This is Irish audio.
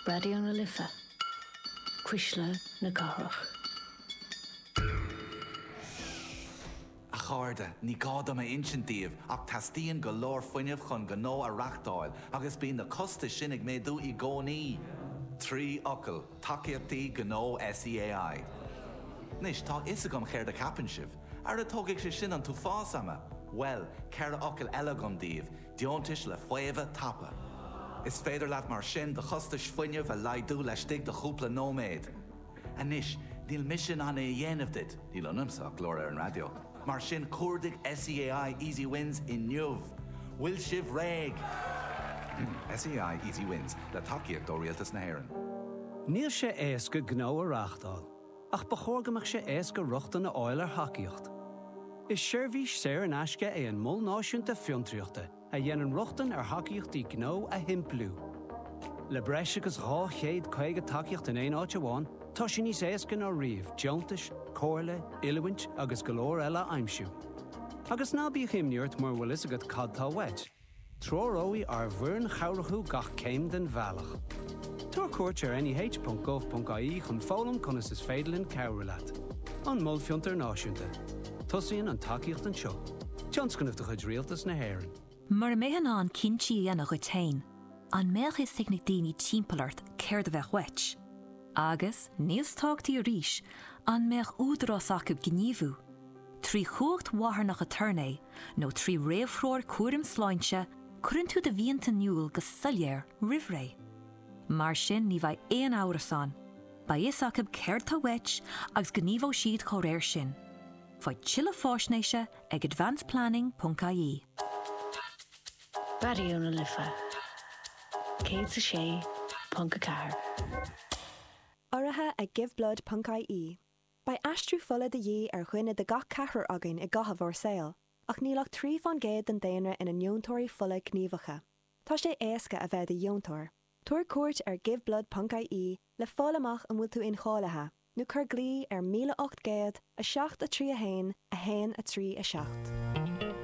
Raidió na Life, Cuisle na Cathrach. A chairde, ní gá dom a insint daoibh ach teastaíonn go leor fuinnimh chun gnó a reachtáil agus bíonn na costais sin ag méadú i gcónaí! Trí fhocal, Tacaíochtaí Gnó SEAI. Anois, tá a fhios agam céard a cheapann sibh. Ara tógfaidh sé sin an t-uafás ama! Bhuel, ceithre fhocal eile agam daoibh, Deontais le faomhadh tapa. Is féidir leat mar sin do chostais fuinnimh a laghdú laistigh de chúpla nóiméad. Anois, níl mise in ann é a dhéanamh duit, níl ionamsa ach glór ar an raidió, mar sin cuardaigh SEAI Easy Wins inniu! Bhfuil sibh réidh? SEAI Easy Wins, le tacaíocht ó Rialtas na hÉireann. Níl sé éasca gnó a reachtáil. ach ba chóir go mbeadh sé éasca rochtain a fháil ar thacaíocht. Is seirbhís saor in aisce é an Mol Náisiúnta Fiontraíochta a dhéanann rochtain ar thacaíochtaí gnó a shimpliú. Le breis agus 250 tacaíocht in aon áit amháin, tá sé níos éasca ná riamh deontais, comhairle, oiliúint agus go leor eile a aimsiú. Agus ná bíodh imní ort mura bhfuil fhios agat cad tá uait, Treoróidh ár bhfoireann chabhrach thú gach céim den bhealach. Tabhair cuairt ar neh.gov.ie chun foghlaim conas is féidir linn cabhrú leat. An Mol Fiontair Náisiúnta. Tosaíonn an tacaíocht anseo. Tionscnamh de chuid Rialtas na hÉireann. Mura mbeifeá in ann cinntí a dhéanamh dhuit féin, an mbeadh fhios ag na daoine timpeall ort céard a bheadh uait? Agus, níos tábhachtaí arís, an mbeadh údarás acu gníomhú? Trí chumhacht mharthanach aturnae, nó trí réamhthreoir cúraim sláinte, cuireann tú do mhianta in iúl go soiléir roimh ré. Mar sin ní bheidh aon amhras ann, beidh fhios acu céard atá uait agus gníomhóidh siad dá réir sin. Faigh tuilleadh fáisnéise ag advanceplanning.ie. Raidió na Life 106.4. Urraithe ag Giveblood.ie. Beidh aistriú fola de dhíth ar dhuine de gach ceathrar againn i gcaitheamh ár saoil, ach níl ach trí fán gcéad den daonra ina ndeontóirí fola gníomhacha. Tá sé éasca a bheith i do dheontóir. Tabhair cuairt ar giveblood ponc IE le fáil amach an bhfuil tú incháilithe, nó cuir glao ar 1800 7 3 1 1 3 7.